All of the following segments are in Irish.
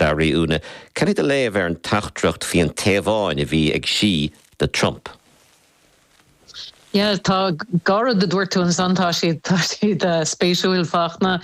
Bhuel Úna, cad é do léamh ar an teachtaireacht faoin Téaváin a bhí ag Xi do Trump? Yeah, tá dhá rud a dúirt tú ansan, tá siad, tá siad spéisiúil Fachtna.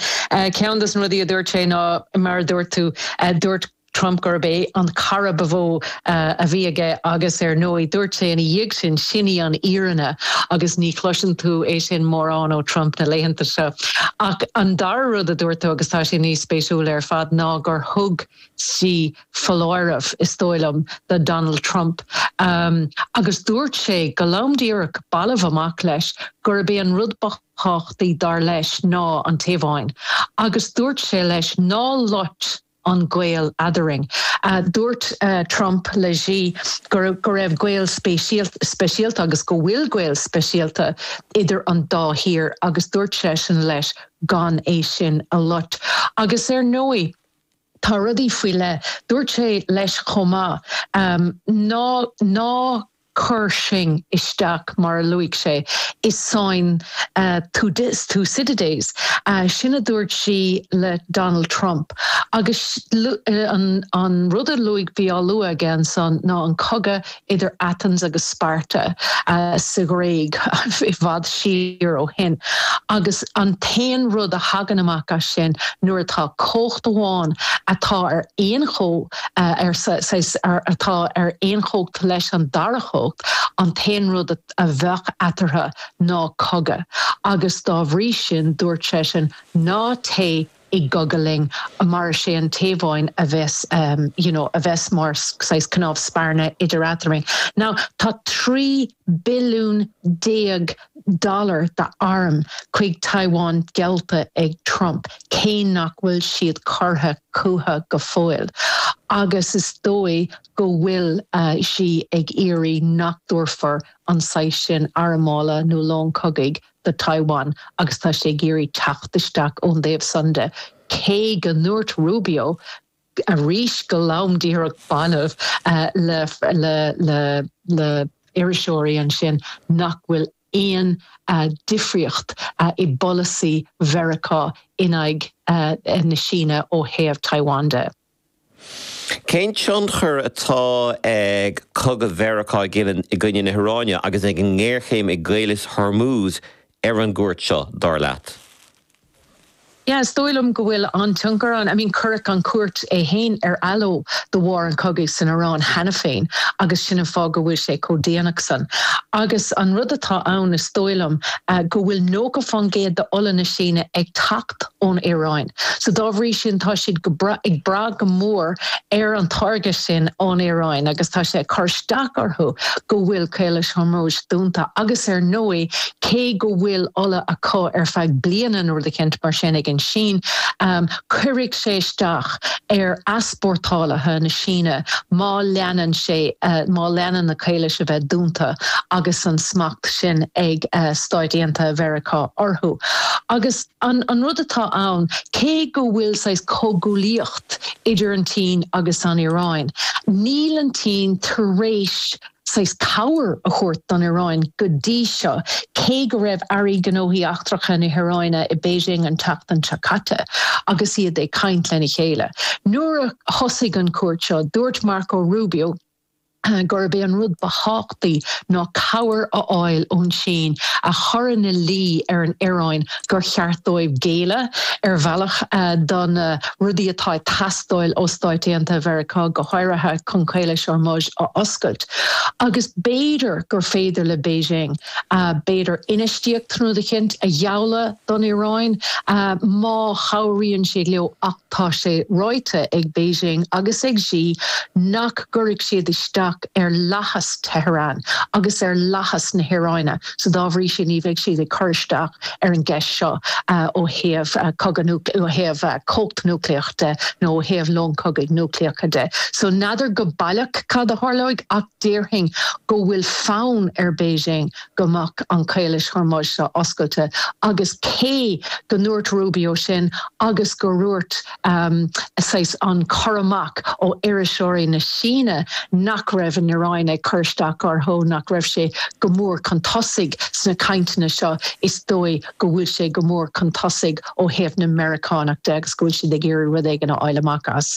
Ceann dos na rudaí a dúirt sé ná, mar a dúirt tú, dúirt Trump gurb é an cara ba mhó, a bhí aige agus ar ndóigh dúirt sé ina dhiaidh sin, sin í an fhírinne agus ní chloiseann tú é sin mórán ó Trump na laethanta seo. Ach an dara rud a dúirt tú agus tá sé níos spéisiúla ar fad ná gur thug Xi foláireamh, is dóigh liom, do Donald Trump agus dúirt sé go lom díreach balbh amach leis gurb é an rud ba thábhachtaí dar leis ná an Téaváin agus dúirt sé leis ná lot an gaol eadrainn. Dúirt Trump le Xi go raibh gaol speisialta agus go bhfuil gaol speisialta idir an dá thír agus dúirt seisean leis gan é sin a lot. Agus ar ndóigh tá rudaí faoi leith. Dúirt sé leis chomh maith ná Cuir sinn isteach, mar a luaigh sé, i sáinn Thucydides. Sin a dúirt Xi le Donald Trump. Agus an rud a luaigh, bhí á lua aige ansan ná an cogadh idir Athens agus Sparta sa Ghréig i bhfad siar ó shin. Agus an t-aon rud a thagann amach as sin nuair atá cumhacht amháin atá ar aon ar saghas atá ar aon chumhacht leis an dara cumhacht, an t-aon rud a bheadh eatarthu ná cogadh, agus dá bhrí sin, dúirt seisean, Ná téigh i gcogadh linn, mar is é an Téaváin a bheas, you know, a bheas mar saghas cnámh spairne idir eadrainn. Now, tá trí. billiún déag dollar d'airm chuig Taiwan geallta ag Trump, cé nach bhfuil siad curtha chucu go fóill, agus is dóigh go bhfuil Xi ag iarraidh nach dtabharfar an saghas sin armála nó lón cogaidh do Taiwan agus tá sé ag iarraidh teacht isteach ón dtaobh san de, cé go ndúirt Rubio arís go lom díreach balbh le iriseoirí ansin nach bhfuil aon difríocht i bpolasaí Mheiriceá in aghaidh na Síne ó thaobh Taiwan de. Cén tionchar atá ag cogadh Mheiriceá i gcoinne na hIaráine agus ag an ngéarchéim i gCaolas Hormuz ar an gcuairt seo, dar leat? Yeah, is dóigh liom go bhfuil an-tionchar ann. I mean cuireadh an chuairt é fhéin ar athló de bharr an chogaidh san Iráin cheana féin agus sin an fáth go bhfuil sé chomh déanach san. Agus an rud atá ann is dóigh liom go bhfuil nócha faoin gcéad d'ola na Síne ag teacht ón Iaráin so dá bhrí sin tá siad go breá, ag brath go mór ar an táirge sin ón Iaráin agus tá sé ag cur isteach orthu go bhfuil Caolas Hormuz dúnta agus ar ndóigh, Cé go bhfuil ola acu ar feadh bliana nó rud eicínt mar sin ag an Sín, cuirfidh sé isteach ar easpórtálaithe na Síne má leanann sé, má leanann na caolais a bheith dúnta agus an smacht sin ag Stáit Aontaithe Mheiriceá orthu. Agus an rud atá ann, cé go bhfuil saghas comhghuaillíocht idir an tSín agus an Iaráin, níl an tSín tar éis saghas cabhair a thabhairt don Iaráin go dtí seo, cé go raibh aire gnóthaí eachtracha na hIaráine i Beijing an tseachtain seo caite agus iad ag caint lena chéile. Nuair a thosaigh an chuairt seo, dúirt Marco Rubio gurb é an rud ba thábhachtaí ná cabhair a fháil ón tSín a chur ina luí ar an Iaráin gur cheart dóibh géilleadh ar bhealach do na rudaí atá ag teastáil ó Stáit Aontaithe Mheiriceá, go háirithe chun Caolas Hormuz a oscailt, agus b'fhéidir gur féidir le Beijing, b'fhéidir, infheistíocht nó tacaíocht a ghealladh don Iaráin má chabhraíonn siad leo ach tá sé ráite ag Beijing agus ag Xi nach gcuirfidh siad isteach ar fhlaitheas Tehran agus ar fhlaitheas na hIaráine. so dá bhrí sin ní bheidh siad ag cur isteach ar an gceist seo ó thaobh cogadh, ó thaobh cumhacht núicléach de nó ó thaobh lón cogaidh núicléacha de. So n'fheadar go baileach cad a tharlóidh ach déarfainn go bhfuil fonn ar Beijing go mbeadh an Caolas Hormuz seo oscailte agus cé go ndúirt Rubio sin agus go ndúirt saghas an cur amach ó iriseoirí na Síne nach raibh an Iaráin ag cur isteach orthu, nach raibh sé go mór chun tosaigh sna cainteanna seo, is dóigh go bhfuil sé go mór chun tosaigh ó thaobh na Meiriceánach de agus go bhfuil siad ag iarraidh rud éigin a fháil amach as.